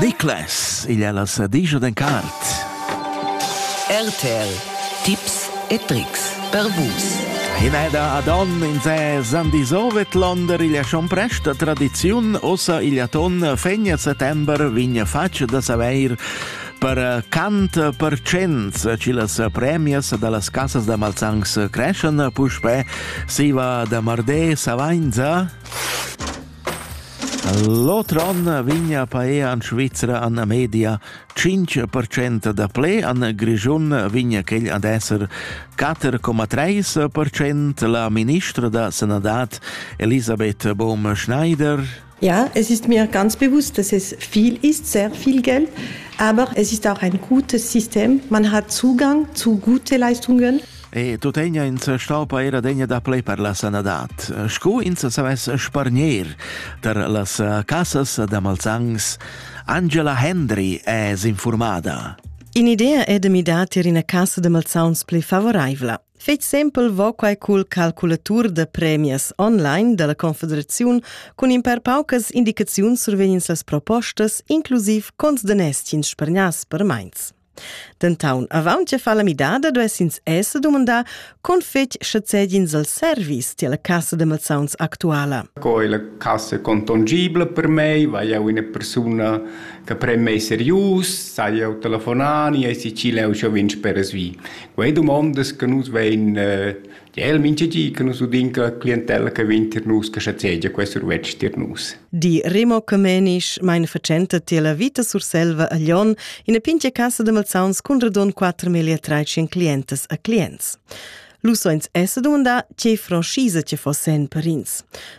Niklas, igl è la sadigia d'en cart. RTL, tips e trics per vus. Hinada Adon in se Sandisovet Londer igl Schomprest da tradiziun ossa igl aton fegna settember vigna fac da saveir per eh, cant per cents ci las premias dallas casas da Malzangs creschan puspè siva da Mardé Savainza L'oter onn vegna a paer en Svizra en la media. Tschintg percent da ple en Grischun vegna quel ad esser. Quatter coma treis percent la ministra da sanadad Elisabeth Bohm-Schneider. Ja, es ist mir ganz bewusst, dass es viel ist, sehr viel Geld, aber es ist auch ein gutes System. Man hat Zugang zu guten Leistungen. E tuttegna ins staupa era degna da play per la sanadad. Scu ins savess spargner tar las casas da Malzangs, Angela Hendry è informada. In'idea è de midar tir ina casa de malzauns pli favoraivla. Fetg sempel vo quai cul calculatur de premias online della Confederaziun cun in per paucas indicaziuns survegnins las propostas, inclusiv cons de neschins spargnas per meins. Dentaun, avant che far la midada, duess ins esser dumandà con fetg sche cedins al service tier la cassa de mazzauns actuala. Co è la cassa contongibile per me? Vai eu una persona che prem me serius? Sai eu telefonani e si ci leu schon vinci per svi? Quei domandas che nus vein eh, El mincha di che nus udin che clientella che vegn tier nus che schazegia quei survetsch tier nus. Di Remo Comenisch mein fatschenta tier la Vita Surselva a Lyon ina pintga casa da malsauns cun radon 4.300 clientas a clients. Lu soins esse dumandà tgei franschisa che fossen per ins.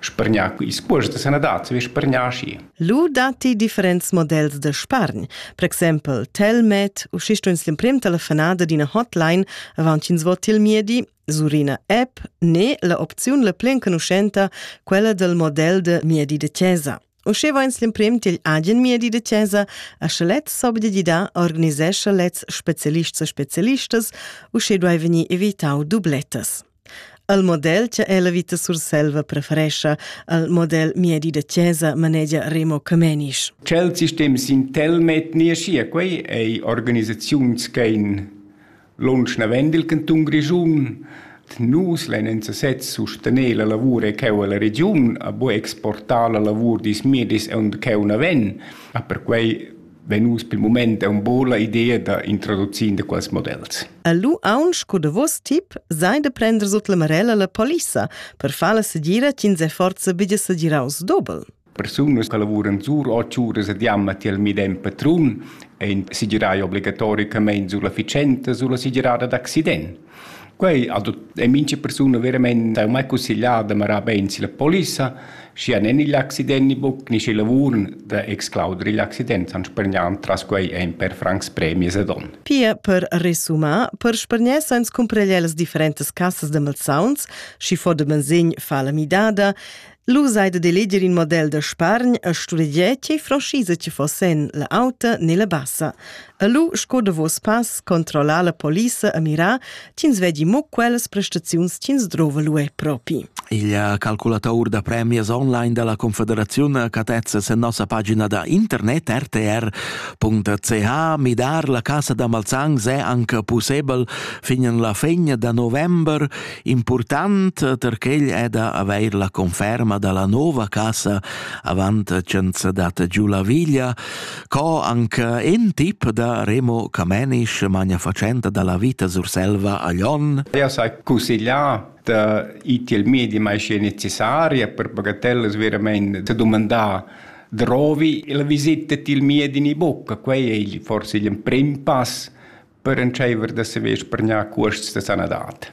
spargnar ils cuosts da sanadad vi spargnar schi. Lu datti differents models da spargn, per exempel Telmed, u schi stuins l'emprim telefonada d'ina hotline avant ch'ins vot il miedi, sur ina app, ne la opziun la pli enconuschenta, quella del model de miedi de chiesa. Usche vains l'emprim til agen miedi de chiesa, a sche lez s'obdedida organisescha lez specialists e specialistas, usche duai vegnir evitau dublettas. Al model cha ella vita Surselva preferescha, al model miedi da chesa manegia Remo Camenisch. Chel sistem sintelmet niaschia quei ei organisaziuns che in lunsch navend il canton Grischun nus len en sesez sustener la lavur e cheu alla regiun a bo exportar la lavur dis miedis e und cheu naven a per quei vegn uss pel mumaint aun po la idea da introducir in da quels models. Lu aunc sco davos tip sai de prender sut la marella la polissa per far la segira ch'ins è forza bigia segiraus dobel. Persunas che lavuran sur 8 uras ad jamma tiel midem patrun ein segirai obligatoricamain sulla ficenta sulla segirada d'accident. Quei ha tut e mincha persuna veramein dau mai cusseglià da marar bein silla polissa, schia nen igl accident ni buc ni sch'il lavur da exclauder igl accident han spargnan tras quei ein per francs premies ed onn. Pia per resumar, per spargnar sans cumpragliar las differentas cassas da malsauns, schi fo da bensegn fa la midada, Lu sai de eleger in model da spargn e sturegier tgei franschisa ti fossen, la auta ne la bassa. E lu, sco davos pass, controllar la polissa e mirar, ch'ins vedi mo quellas prestaziuns ch'ins drova lu è propi. Il calculatur da premias online dalla Confederaziun catezza sen nossa pagina da internet rtr.ch midar la casa da Malzang se anche possibel fin en la fin da november Important per quel è da avair la conferma da la nova casa avant tschenza data giu la viglia, co anche in tip da Remo Camenisch, magna facenta da la vita Surselva a Lyon. Eu s'ha consiglià da ir til medi mai schi necessaria per bagatellas veramente da domandar drovi la visita til medi in bucca, quei è forse il prim pass per entscheiver da saver spargnar cuosts da sanadad.